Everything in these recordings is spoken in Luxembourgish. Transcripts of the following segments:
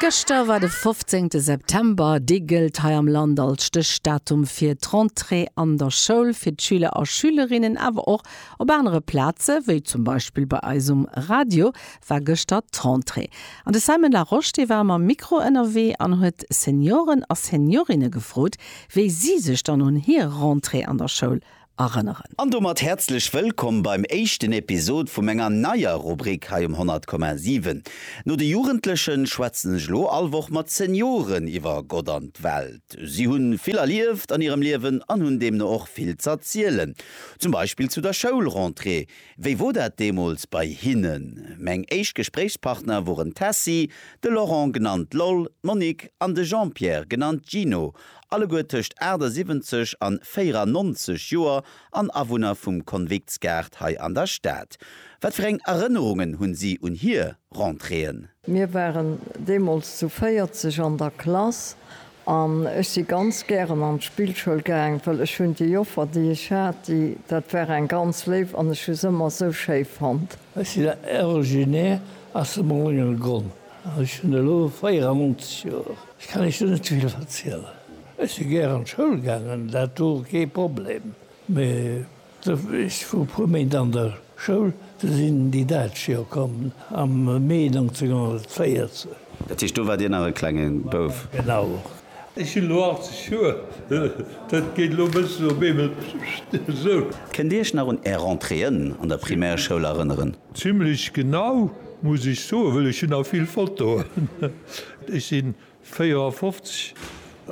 Gëschter war de fofzéngte September. Dee gëllt hei am Land als Stéchdatum fir d'Rentrée an der Schoul, fir d'Schüler a Schülerinnen. Awer och op anere Plaze wéi zum Beispill bei eis um Radio war gëschter d'Rentrée. An de Simon Larosche, dee war mam Mikro ënnerwee an huet Senioren a Seniorinne gefrot, wéi si sech dann un hir Rentrée an der Schoul erënneren. An domat häerzlech wëllkomm beim éischten Episod vu menger neier Rubrik hei um 100,7. No de Jugendlechen schwätzen ech elo all Woch mat Senioren iwwer Gott an d'Welt. Si hunn vill erlieft an hirem Liewen an hunn deemno och vill z'erzielen. Zum Beispill zu der Schoulrentrée. Wéi wor dat deemools bei hinnen? Meng éischt Gespréichspartner woren d'Tessy, de Laurent genannt Loll, d'Monique an de Jean-Pierre genannt Gino. Alleguer tëscht 78 an 94 Joer an Awunner vum Konviktsgaart hei an der Stad. Wat fir eng Erënnerungen hunn si un hier Rentréeën? Mir waren deemools zu 40 an der Klass an ech si ganz gären an d'Spillschoul gaang, well ech hunn déi Joffer, déi ech hat, déi, dat war eng ganz léif an ech hu se ëmmer esou schéi fonnt. Ech sinn originaire aus dem Réngelgronn. Ech hunn elo 94 Joer. Ech kann Iech do net vill verzielen. Ech si gär an d'Schoul gaangen, dat wor kee Problem. Mee ech wor e puer Méint an der Schoul, du sinn déi Däitsch jo komm am Mee 1914. Dat heescht, do war Dir nach e klenge Bouf? Genau. Ech hunn elo 80 Joer, dat geet elo e bëssen op eemol esou. Kënnt Dir Iech nach un Är Rentréeën an der Primärschoul erënneren? Zimmlech genau, muss ech soen, wëll ech hunn nach vill Fotoen. Ech si 54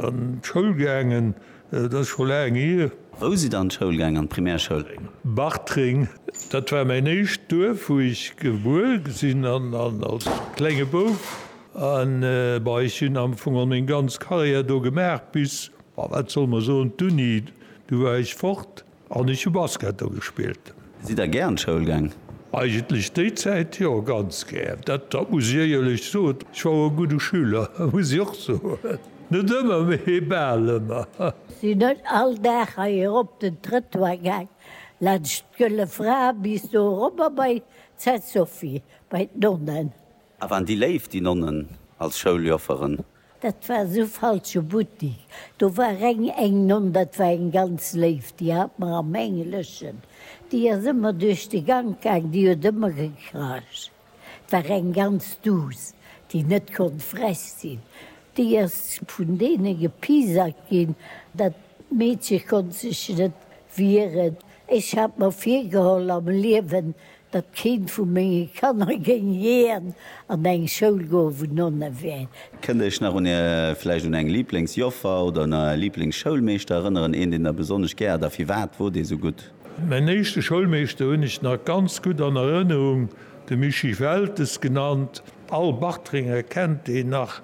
an d'Schoul gaangen, dat ass scho laang hier. Wou sidd Der an d'Schoul gaangen, an d'Primärschoul? Bartreng, dat war mäin éischt Duerf, wou ech gebuer sinn an als klenge Bouf A bei ech hunn am Fong och meng ganz Carrière do gemaach bis, ma wat soll mer soen, d'Uni, du war ech fort an ech hu Basket do gespillt. Sidd Der gär an d'Schoul gaang? Eigentlech déi Zäit jo, ganz gär. Dat dat muss ech éierlech soen. Ech war och e gudde Schüler, muss ech och soen. Net ëmmer, mee bal ëmmer. Sinn net all Dag hei erop den Trëttoir gaang, laanscht d'Gëlle Fra bis do erobber bei d'Sainte Sophie, bei d'Nonnen. A waren déi léif, déi Nonnen als Schouljofferen? Dat war esou falsche Buttik. Do war reng eng Nonn, dat war eng ganz léif, déi hat mer am Engleschen, déi ass ëmmer duerch de Gank gaang, déi huet ëmmer gekracht. Et war eng ganz duuss, déi net konnt frech sinn. Déi ass vun deene gepiesackt ginn. Dat Meedche konnt sech net wieren. Ech hat mer virgeholl am Liewen, datt keent vu menge Kanner géing jiän an eng Schoul goen, wou Nonne wären. Kënnt Iech nach un Är, vläicht un eng Lieblingsjoffer oder un Är Lieblingsschoulmeeschter erënneren? Een, deen Der besonnesch gär hat a firwat wor dee sou gutt? Mäin éischte Schoulmeeschter hunn ech nach ganz gutt an Erënnerung, de Mischii Weltes genannt. All Bartrenger kennt deen nach.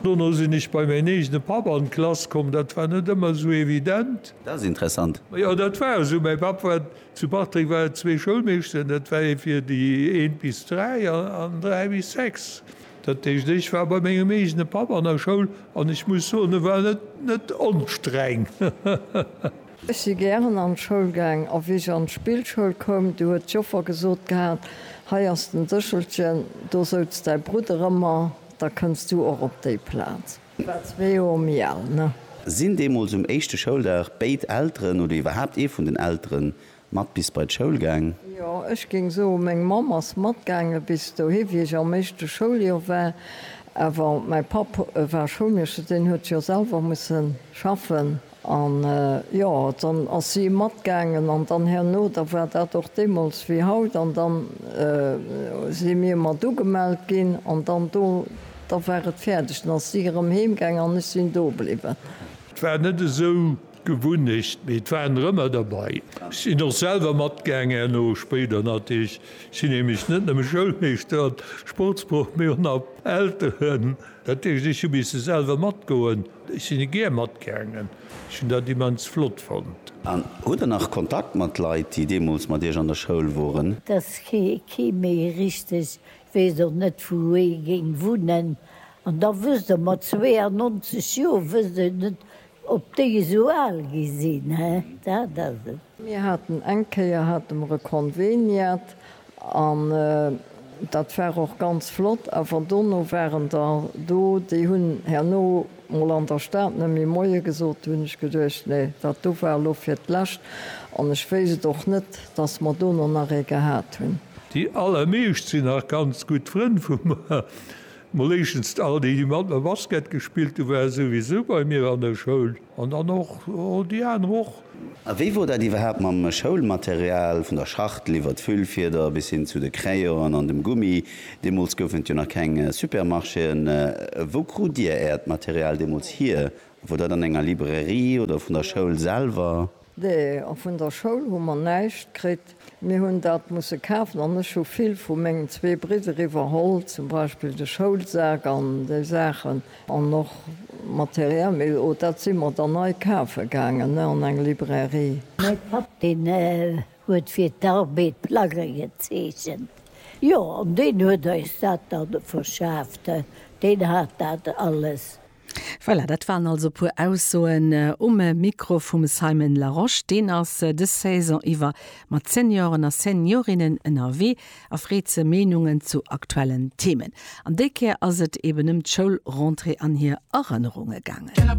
Dono sinn ech bei mäin eegene Papp an d'Klass komm, dat war net ëmmer sou evident. Dat ass interessant. Jo, dat war esou, mäi Papp war Zu Bartreng war et zwee Schoulmeeschteren, dat war ee fir déi eent bis dräi an dräi bis sechs. Dat heescht, ech war bei mengem eegene Papp an der Schoul an ech muss soen, e war net onstreng. Ech si gären an d'Schoul gaang a wéi ech an d'Spillschoul koum, du huet d'Joffer gesot gehat, hei ass den Séchelchen, do souz däi Brudder ëmmer, da kënns du och op déi Plaz. War zwee Joer méi al, ne? Sinn deemools um éischte Schouldag béid Elteren oder iwwerhaapt ee vun den Eltere mat bis bei d'Schoul gaang? Jo, ech géing soen, meng Mamm ass matgaange bis dohi, wéi ech am éischte Schouljoer war. Awer mäi Papp war Schoulmeeschter, deen huet jo selwer musse schaffen. An, jo, dann ass si matgaangen, an dann herno, da war dat och deemools wéi haut, an dann si mir mat ugemellt ginn, an dann do, da war et fäerdeg, dann ass si erëm heemgaangen an ech sinn do bliwwen. Et war net esou d'Gewunnecht, mee et waren der ëmmer derbei. Ech sinn och selwer matgaangen herno, spéider natierlech. Ech sinn nämlech net nëmme Schoulmeeschter an Sportsproff, mee och nach Elteren. Dat heescht, ech hu misse selwer matgoen. Ech sinn e gär matgaangen. Ech hunn dat immens flott fonnt. An hutt der nach Kontakt mat Leit, déi deemools mat Iech an der Schoul woren? Dass kee méi richteg weess, och net wou ee géing wunnen. An da wësst Der, mat 92 Joer wësst Der net, ob déi esou al gi sinn, he? Dat ass et. Mir haten eng Kéier hate mer e Conveniat an dat war och ganz flott, awer dono waren der do, déi hunn herno mol an der Stad net méi Moie gesot. Do hunn ech geduecht, nee, dat do war elo fir d'lescht an ech wéisst et och net, dass mer dono nach ee gehat hunn. Déi allermeescht sinn nach ganz gutt Frënn vu mer. Mol éischtens all déi, déi mat mer Basket gespillt hunn, ware souwisou bei mir an der Schoul. An dann och déi aner och. A wéi wor dat iwwerhaapt mam Schoulmaterial, vun der Schachtel iwwert d'Füllfieder bis hin zu de Crayonen an dem Gummi? Deemools goufen et jo nach keng Supermarchéen. Wou krut Dir Äert Material deemools hier? Wor dat an enger Librairie oder vun der Schoul selwer? Nee, och vun der Schoul hu mer näischt kritt. Mir hunn dat musse kafen an ech hu vill vu mengen zwee Bridder iwwerholl, zum Beispill de Schoulsak an déi Saachen an och materiell, mee o dat si mer dann nei kafe gaangen, ne, an eng Librairie. Mäi Papp, deen huet fir d'Arbed Plagge gezeechent, jo, an deen huet eis dat da verschaaft, deen hat dat alles. Voilà, dat waren also e puer Aussoen um Mikro vum Simon Larosche. Deen ass dës Saison iwwer mat Senioren a Seniorinnen ënnerwee a freet se Meenungen zu aktuellen Themen. An déi Kéier ass et eben ëm d'Schoulrentrée an hir Erënnerunge gaangen.